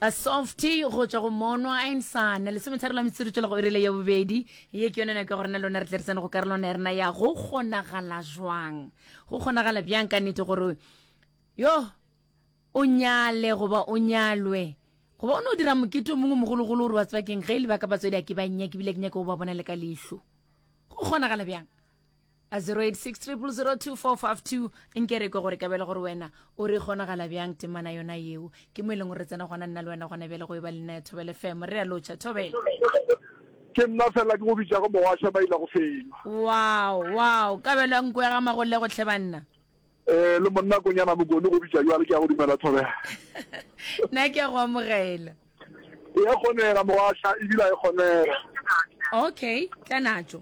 a softy go tswa go monwa a insana lesometharo la metsotso tswela go erele ya bobedi ye ke yone nako ya gorena lona re tle re tsene go karolwana ya rena ya go kgonagala jwang go kgonagala bjang ka nnete gore yo o nyale goba o nyalwe goba o ne o dira mokete o mongwe mogologolo gore wa tsebakeng ge e lebaka batswadi a ke ba nnyake ebile ke nyake go ba bona le ka leitlho go kgonagala bjang 086000245 nke re kwe gore kabele gore wena o re kgonagala bjang temana yona yeo ke mo e leng gore re tsena gona nna le wena gona bjale go e ba lena ya thobele femo re a lotšha thobele ke nna fela ke go bitša go mowasha ba ile go fenya wow wow kabelo ya nko ya ga magolle go tlhe banna um le monna konyana mokone go bitša jwale ke ya go dumela thobela nna ke ya go amogela e kgonega mowasha ebile a e kgonega okay tla natso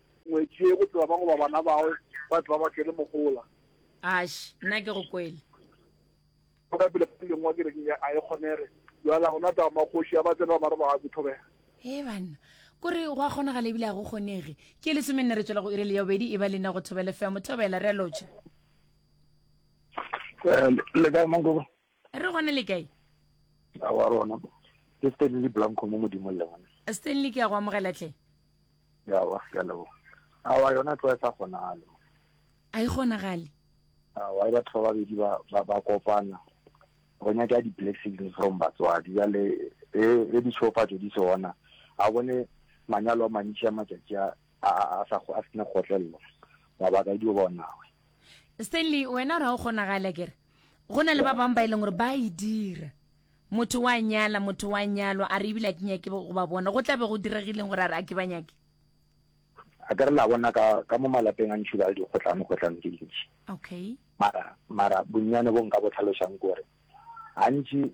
Ngwetši ye, go tloga ba goba bana bao ba tloga ba kene mogola. Ash, nna ke go kwele. Go ka pele ka lengwa ke reng a e kgonege. Bjala gona taba magoši a ba tsena ba re ba ga kuthobega. Ee banna. Kore go a kgonagala ebile a go kgonege. Ke lesome nne re tswela go irele ya bobedi e ba lena go thobele fea mothobela re a lotšha. Le kae mankoko? re gona le kae a wa rona ke stanley blanco mo modimong le gona stanley ke ya go amogela tle yawa ke a leboga awa yona tlo e sa kgonagale a e kgonagale awa e batho ba babedi ba kopana go nyaka di-blessings from batswadi jale e, e ditšhofatso di se ona a bone manyalo a mantši a matšatši a a a a sa go a sena kgotlelelo mabaka dio ba onawe Stanley wena ra o kgonagala kere go na le ba bang ba e leng gore ba e dira motho wa nyala motho wa nyalwa a re ebile a ke nyake go ba bona go tla be go diregileng gore a re a ke ba nyake a ka re la bona ka ka mo malapeng a ntšhi ba le dikgotlano kgotlano ke dintšhi okay mara mara bonnyane bo nka bo tlhalosang gore gantši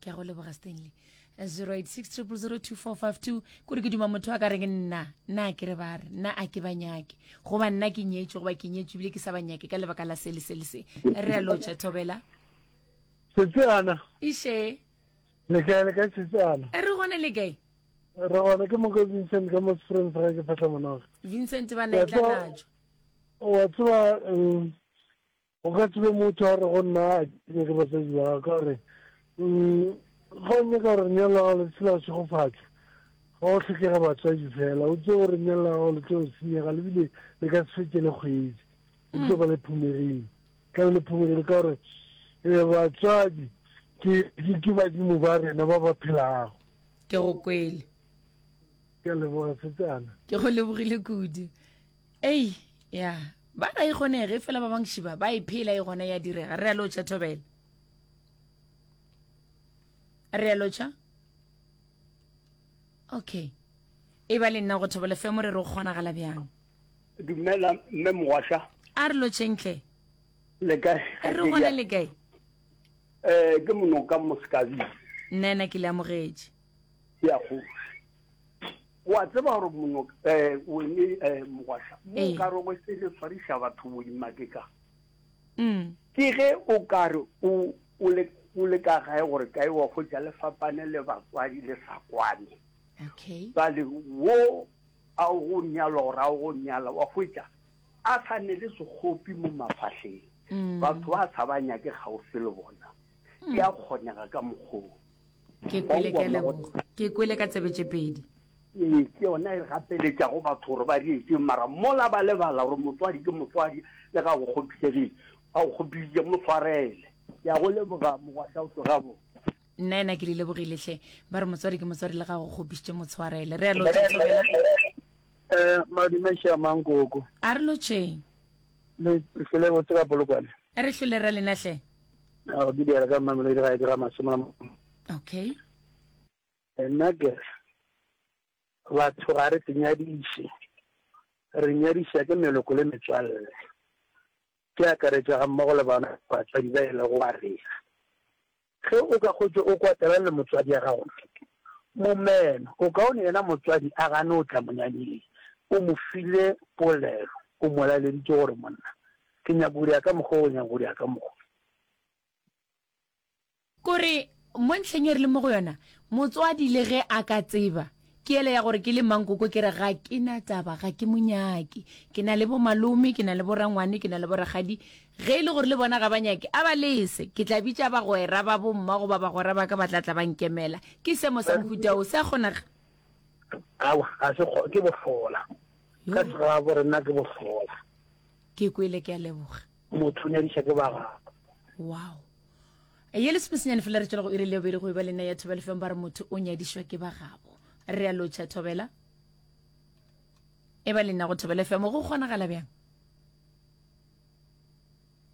ke a go leboga stanley 0860002452 kore ke duma motho a ka reng nna nna a kere ba re nna a ke ba nyake goba nna ke nyetswe goba ke nyetswe ebile ke sa ba nyake ka lebaka la sele sele se re a lotšha thobela setsana iše lekae le ka setsana e re gone le kae re gone ke moko vincent ka mo sefreng sa ga ke phatla monoga vincent ba na e tla natso wa tseba um, O ka tsebe motho a re go nna a kene ke basadi ba ka gore mm, ga o nyaka gore lenyalo la gago le tshela go segofatšwa ga go tlhokega batswadi fela o tse gore lenyalo la gago le tlo senyega lebile le ka se fetse le kgwedi o tlo ba le phumegile ka le phumegile ka gore um batswadi ke badimo ba rena ba ba phelago ke go kwele ke leboga setsana ke go lebogile kudu ei ya ba ga e kgonege fela ba bangši ba ba e phela e gona ya direga re a lotšha thobela re a lotšha okay e ba le nna go thobela fe mo re re o kgonagala bjang dumela mme mogwasha a re lotšhentle le kae re gona le kae um ke monoka mosekabile nna ena ke le amogetše ke ya go wa tseba gore mono eh o ne eh mogwasha mo ee. ka re go se le tshwarisha batho bo dimake ka mm. ke ge o ka re o o le o le ka gae gore ka ewa go ja lefapane le bakwadi le sa kwane okay ba le wo a o go nyala gore a o go nyala wa go ja a sa ne le segopi mo mafahleng mm. batho ba sa ba nyake gaufi le bona ya kgonega ka mogolo ke kwele ke a leboga ke kwele ka tsebe tše pedi ee ke yona e gapeletša go batho gore ba reetseng mara mola ba lebala gore motswadi ke motswadi le ga go kgopisegile ga go kgopisitse mo tshwarele ya go leboga mogwatlhaotso gabo nna ena ke le lebogiletlhe ba re motswadi ke motswadi le ga go kgopisitse mo tshwarele re alo tshobela eh madume sha mangoko a re lotšeng le hlole botse ka polokwane re hlole ra lenatlhe ao ke diela ka mmamelo le gae ke ga masome okay nna ke batho ga re senyadiše re nyadiša ke meloko le metswalle ke akaretša ga mmogo le bana batswadi ba e lego wa rena ge o ka kgotse o kwatela le motswadi ya gago momeno o kaone yena motswadi a gane o tla monyanyeng o mo file polelo o mo laleditse gore monna Ke nyaka go dira ka mokgwa o nyaka go dira ka mokgwa. Kore mo ntlheng e re le mo go yona, motswadi le ge a ka tseba, ke yela ya gore ke le mankoko ke re ga ke na taba, ga ke mo nyake. Ke na le bomalome, ke na le borangwane, ke na le borakgadi. Ge e le gore le bona ga ba nyake, a ba lese. Ke tla bitša bagwera ba bomma goba bagwera ba ka ba tla tla ba nkemela. Ke seemo sa mohuta wo. Se a kgonega? Aowa, ga se kgo, ke bohlola. Ka segabo re nna ke bohlola. Ke kwele ke a leboga. Motho o nyadiša ke ba gagwe. Wow. Ye le sepesenyane fela re tšwela go iri le bobedi go eba le nna ya thobela feng ba re motho o nyadišwa ke ba gabo. Re a lotšha thobela. E ba le nna go thobela femo go kgonagala bjang?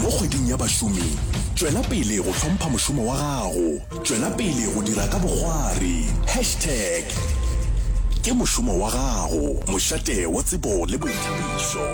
Mo kgweding ya bašomi, tšwela pele go hlompha mošomo wa gago. Tšwela pele go dira ka bogwari. Hashtag Ke mošomo wa gago, mošate wa tsebo le boithabišo.